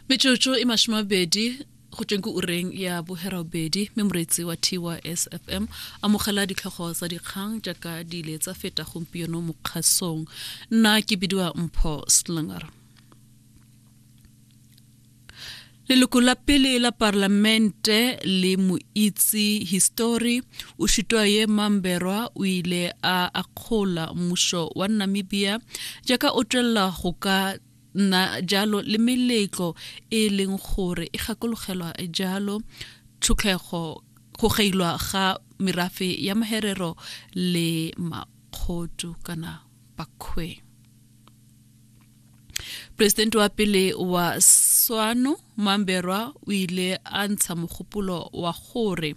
metsotso e mashome mabedi go tsweng ke ureng ya boherabedi mme moreetsi wa tys fm amogela ditlhogo tsa dikgang jaaka di ile tsa feta gompieno mo kgasong nna ke bidiwa mpho slinger Leloko la pele la parlamente le moitsi histori o Shitwaye Mamberwa o ile a akgola mmušo wa Namibia jaaka o tšwelela go ka nna jalo le meletlo e leng gore e gakologelwa jalo tšhotlego go geilwa ga merafe ya maherero le makgotu kana bakhwe. presidente wa pele wa swano mamberwa o ile a ntsha mogopolo wa gore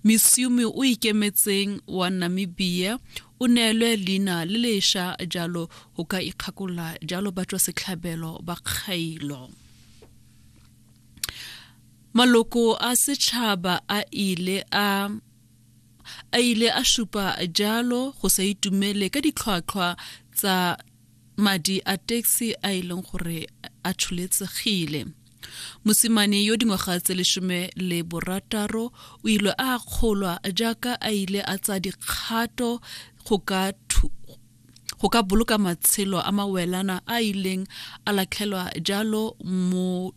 misiumi o ikemetseng wa namibia o neelwe leina le leša jalo go ka ikgakolola jalo ba tswa setlhabelo ba kgailo maloko a setšhaba a ile a a ile a šupa jalo go sa itumele ka ditlhwatlhwa tsa madi a taxi a e leng gore a tsholetsegile mosimane yo dingwaga tse lesome le borataro o ile a kgolwa jaaka a ile a tsa dikgato go ka go ka boloka matshelo a mawelana a ileng a latlhelwa jalo mo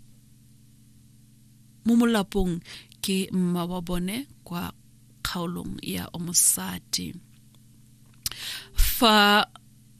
mo molapong ke mma wa bone kwa kgaolong ya omosadi fa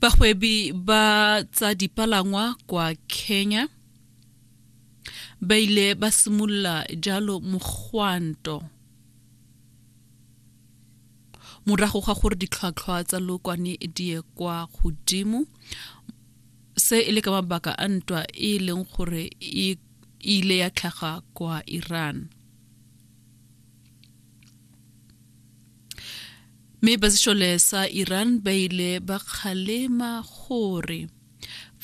bagwebi ba tsa dipalangwa kwa kenya ba ile ba simolola jalo mogwanto morago ga gore ditlhwatlhwa tsa lokwane di ye kwa godimo se e le ka mabaka a ntwa e leng gore e ile ya tlhaga kwa iran Mme basešole sa Iran ba ile ba kgalema gore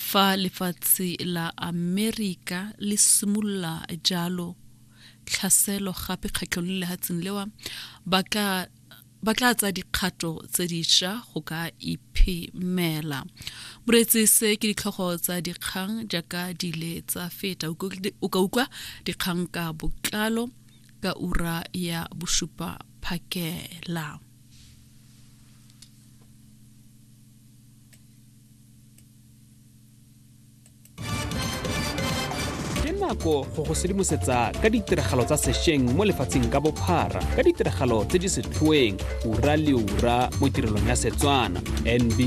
fa lefatshe la Amerika le simolola jalo tlhaselo gape kgetlho le lehatseng lewa ba ka ba tla tsa dikgato tse diša go ka iphemela moreetsi se ke ditlhogo tsa dikgang jaaka dile tsa feta o ka utlwa dikgang ka botlalo ka ura ya bosupa phakela nako go go sedimosetsa ka ditiragalo tsa sešweng mo lefatsheng ka bophara ka ditiragalo tse di setlhoeng ura le ura mo tirelong ya setswana nb